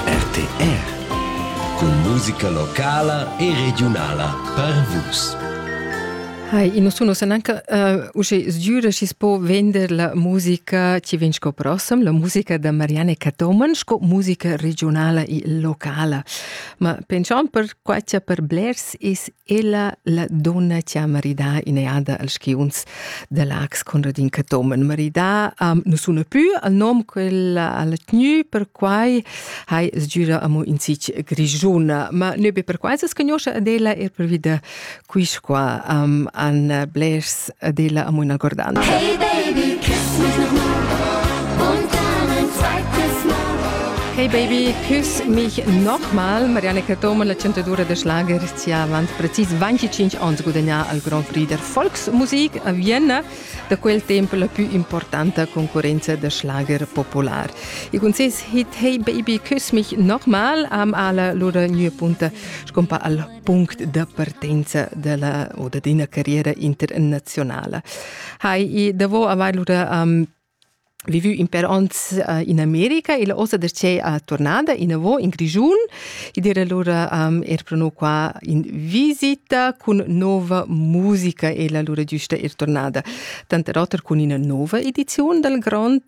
RTR cun musica locala e regiunala per Vus. Hai, in sunu san anche uh, usce sgiura ci spo vender la musica ci vin sco prossam, la musica da Marianne Catoman sco musica regionala e locala. Ma pension per quatia per blers is Ella, la donna che ha maridà in'eada als skiunzs da Lax Conradin Cathomen. Maridà um, nu suna pü al nom quel al tgnü, perquai hai sgüra amo in sich grischuna. Ma nö be perquai s'es cagnoscha ad ella er pervi da quis qua um, an blers ed ella am üna gordantscha. Hey baby, küss mich noch mal und dann ein zweites Mal. Hey baby, küss mich nochmal. Marianne Catoma, la 102 de Schlager, ist ja avant precis 25 ans gudagnà al Grand Prix der Volksmusik a Vienna, da quel temp la più importante concorrenza de Schlager popular. E con ses hit Hey Baby, Küss mich nochmal am ala lura gnue punta scompa al punct da partenza della o da d'ina carriera internazionala. Hai i davo avair lura um, vivu in per ons uh, in America e la osa da c'è a tornada in avo in Grigiun e dire lura um, er prono qua in visita cun nova musica e la lura giusta er tornada. Tante roter cun ina nova edizione dal Grand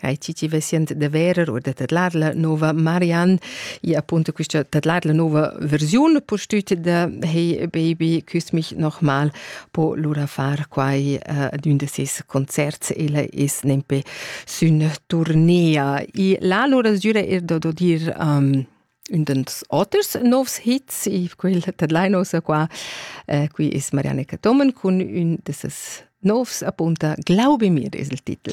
Hai ti ti vesient de verer or de tedlar la nova Marianne e appunto questa tedlar la nova versione postüt de Hey Baby küss mich nochmal po lura far quai uh, d'un de ses concerts ella es nempe sün tournea e la lura sgüra er da do dir um, un dels oters novs hits e quel tedlainos qua uh, qui es Marianne Catomen cun un de ses novs appunta Glaube mir es il titel